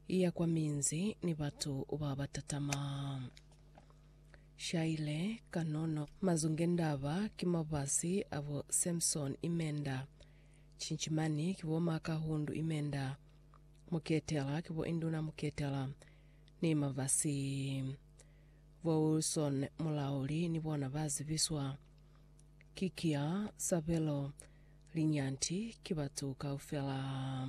Iya kwa minzi ni batu ba ba tatama. Shaile, kanono. Mazunge ndaba ki mabasi a bo Samson imenda. Cinchimani ki bo Makahundu imenda. Muketela ki bo Induna Muketela ni mabasi. Bo Wilson Mulauli ni bona ba zibiswa. Ki kia Sabelo. Linyanti ki batu kaufela.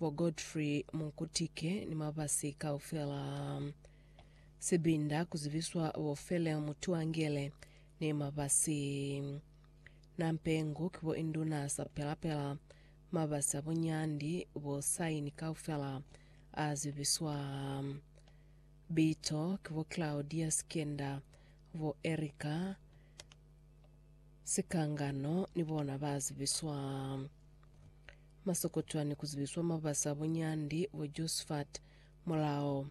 Bo Godfrey Munkutike ni mabasi kaufela a sibinda ku zibiswa bo Feleo Mutuangele ni mabasi Nampengu ki bo Induna Sapelapela, mabasi a bunyandi bo Saini kaufela a zibiswa bito ki bo Claudia Sikenda, bo Erica Sikangano ni bona ba zibiswa Masokotwa ni kuzibiswa mabasa bunyandi bo Josfat mulao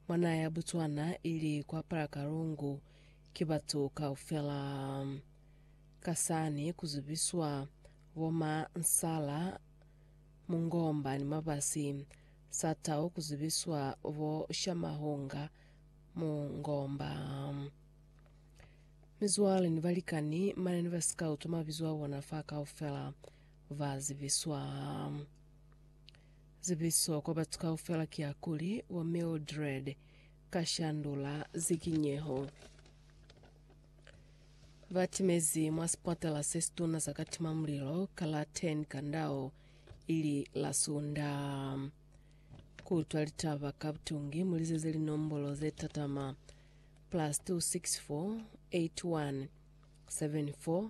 mwa naha ya Botswana ili kwa Parakarungu ki batu kaufela. Ka sani kuzibiswa bo ma Nsala, Mungomba ni Mabasi sa tau kuzibiswa bo Shamahunga, Mungomba. Mizwale ni balikani mane ni ba sikauto mabizo a bona fa kaufela. ba zibiswa. Zibiso kwa batu kaufela ki ya kuli, Wa Mildred ka shandula zikinyeho. Ba timezi mwa sipatala se situna sa ka tima mulilo ka la 10 Kandao ili la Sunda. Ku utwa litaba ka butungi mu lizeze linombolo ze tatama, plus 264 81 74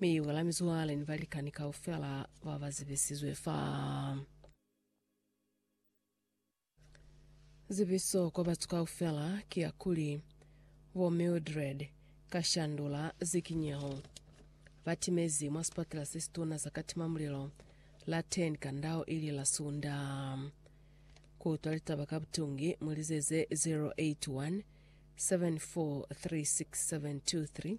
Mi u kala mizwale ni balikani kaufela ba ba zibisizwe fa. Zibiso kwa batu kaufela ki ya kuli, Bo Mildred Kashandula Zikinyeho ba timezi mwa sipatela se situna sa katimamulilo la Ten ka ndau ili la Sunda. Ku utwa litaba ka butungi, mu lizeze 081 7436723